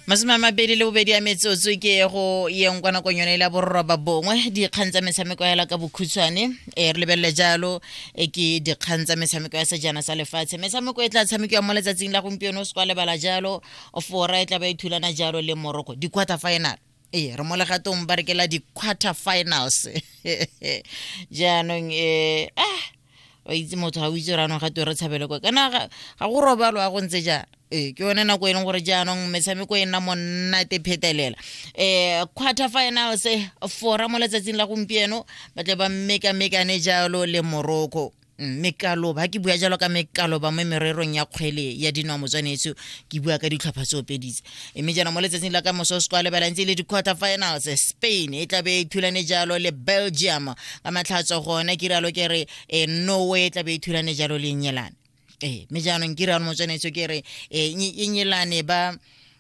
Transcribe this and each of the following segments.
masome a mabedi le bobedi ya metsotso ke ye go yeng kwa nakong yone e la bororoba bongwe dikgang tsa metshameko ya la ka bokhutshwane e re lebelele jalo e ke dikgang tsa metshameko ya sejana sa lefatshe metshameko e tla tshamekiwa mo letsatsing la gompieno o se kwa lebala jalo fora e tla ba e thulana jalo le moroko di-quarter final ee re mo legatong ba rekela di-quarter finals jaanong um ah wa itse motho ga o itse gore anong gate re tshabele kwa kana ga go robalo a go ntse jang ee ke yone nako e leng gore jaanong metshameko e nna monnate phetelela um quarter finals fora mo letsatsing la gompieno ba tle ba mmekamekane jalo le morocco Mm, mekaloba ga ke bua jalo ka mekaloba mo mererong ya kgwele ya dino ya motswanetso ke bua ka ditlhopha tse opeditse mme jaana mo letsatsing la ka moso se kwa lebelang tse le di-quarter finals spain e tlabe e thulane jalo le belgium ka matlhatso gone ke rialo ke re e norway e tlabe e thulane jalo le nyelane ee mme jaanong ke rialo motswanetso ke re e nyelane ba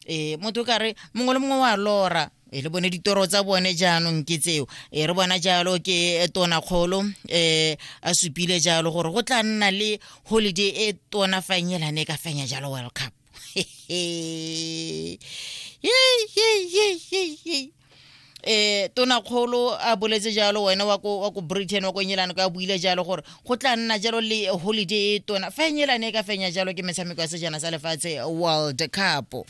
e motho ka re mongwe le mongwe wa lora e le bone ditoro tsa bone jaanong ke tseo e re bona jalo ke tona kgolo um a supile jalo gore go tla nna le holiday e tona fanyelane ka fenya jalo world cup eh tonakgolo a boletse jalo wena wa ko wa ko britain wa ko engelane ka buile jalo gore go tla nna jalo le holiday e tona fa engelane e ka fenya jalo ke metshameko ya sejana sa lefatshe world cup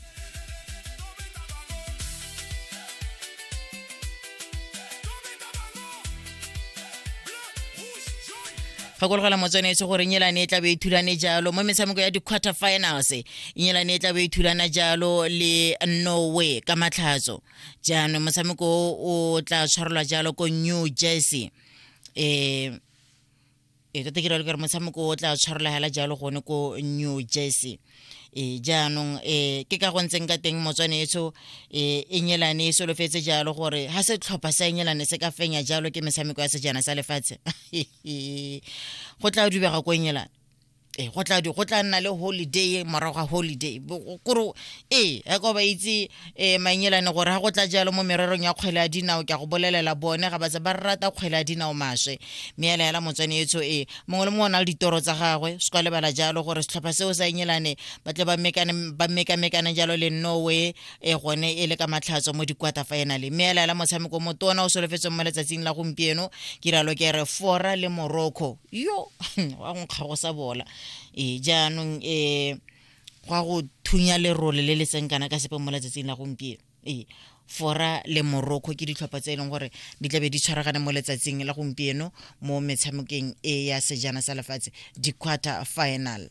gakologelwa motswanetse gore nyelane e tlabe e thulane jalo mo metshameko ya di-quarter finals nyelane e tlabe e thulana jalo le norway ka matlhatso jaanong motshameko o tla tshwarelwa jalo ko new jersey um e tota ke ralo kare motshameko o tla tshwarelagela jalo gone ko new jersey e jaanong e ke ka go ntseng ka teng motswane etso e e nyelane e solofetse jalo gore ha se tlhopha sa nyelane se ka fenya jalo ke metshameko ya sejana sa lefatshe go tla dubega ko nyelane e go tla go tla nna le holiday morago ga holiday kore e a ko ba itse e mainyelane gore ga go tla jalo mo mererong ya kgwele ya dinao ke a go bolelela bone ga batse ba rata kgwele ya dinao maswe mme ya laela motswane etso e mongwe le mongwe o na le ditoro tsa gagwe se kwa lebala jalo gore setlhopha seo sa inyelane ba tle ba mekamekane jalo le norway e gone e le ka matlhatso mo dikwata fa ena le mme ya laela motshameko motona o solofetsweng mo letsatsing la gompieno ke ralo ke re fora le morocco yo wa go nkgago sa bola e jaanong um go a go thunya lerole le le tseng kana ka sepe mo letsatsing la gompieno ee fora le morocco ke ditlhopha tse e leng gore di tlabe di tshwaragane mo letsatsing la gompieno mo metshamekeng e ya sejana sa lefatshe di-quarter final